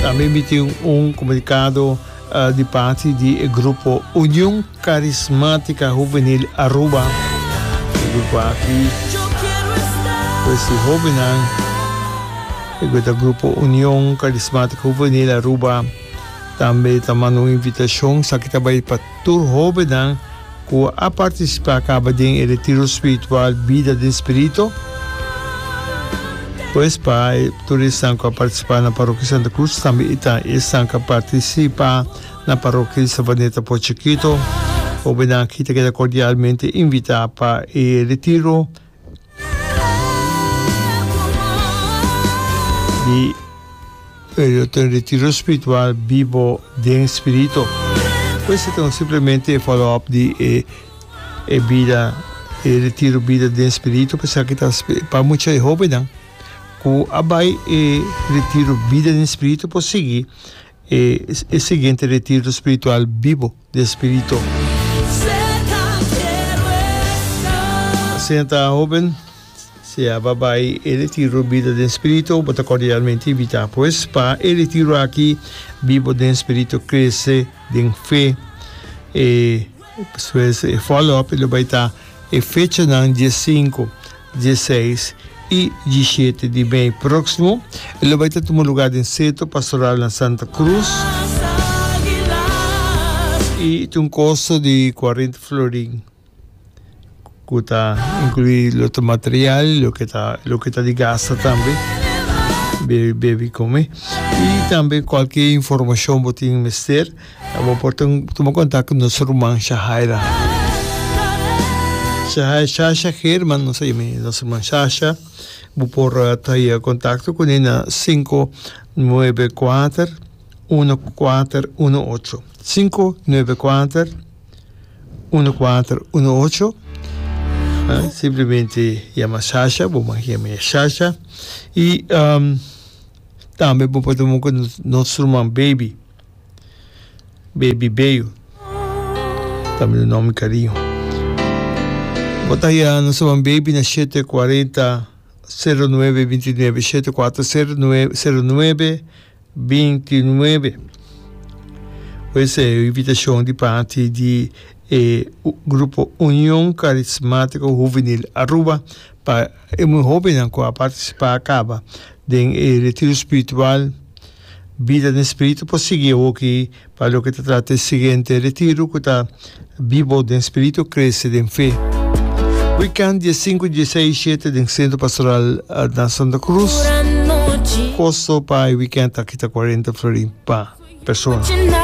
Tambe mi tin un komunikado di parti di e grupo Union Karismatika Hubenil Aruba. E grupo aki pues di hobennan e ku ta grupo Union Karismatika Hubenil Aruba tambe ta manda un invitashon. Esaki ta bai pa tur hobennan. Cu a participa caba den e retiro spiritual Bida den Spirito? Pues pa tur esnan cu a participa na Parokia Santa Cruz, tambe e ta esnan cu a participa na Parokia di Sabaneta Port Chikito. Hobennan aki ta keda cordialmente invita pa e retiro. Di Periodo ta un retiro spiritual bibo den spirito. Por esta ta un simplemente e follow up di e e bida e retiro bida den spirito pa esaki ta pa mucha e hobennan cu a bay e retiro bida den spirito por sigui e e siguiente retiro spiritual bibo. di e Spirito. Senta, hoben, si a ba bai e retiro Bida den Spirito, bo ta kordialmente invitá pues pa e retiro aki Bibo den Spirito, Krese den Fe. E despues e follow-up lo bai ta. E fechanan di e sinku, di e seis i di e shete di mei próksimo e lo bai ta tuma lugá den Sentro Pastoral na Santa Cruz i ta un kosto di kuarenta florin ku ta inkluí lo ta material i loke ta loke ta di gasta tambe bebe bebe kome i tambe kualke informashon bo tin mester. Abo por tuma kontak ku nos ruman Shahaira Shasha German nos a yama e nos ruman Shasha bo por ta haña kontakto kuné na sinku nuebe kuater uno kuater uno ocho sinku nuebe kuater uno kuater uno ocho simplemente yama Shasha bo mag yama e Shasha i tambe bo por ta wòrdu ku nos ruman Baby. Baby Beyo. También un nombre cariño. Botaya no soban baby na 740 09 29 740 09 29. Pues eh, invitación de parte de eh, grupo Unión Carismático Juvenil Aruba para eh, muy joven a participar acaba den eh, retiro espiritual Bida den spiritu por sigui awoki pa loke ta trata e siguiente retiro cu ta Bibo den spiritu, crece den fe. Weekend dia sinku, dia seis i shete den Centro Pastoral na Santa Cruz. Costo pa e weekend aki ta cuarenta florin pa persona.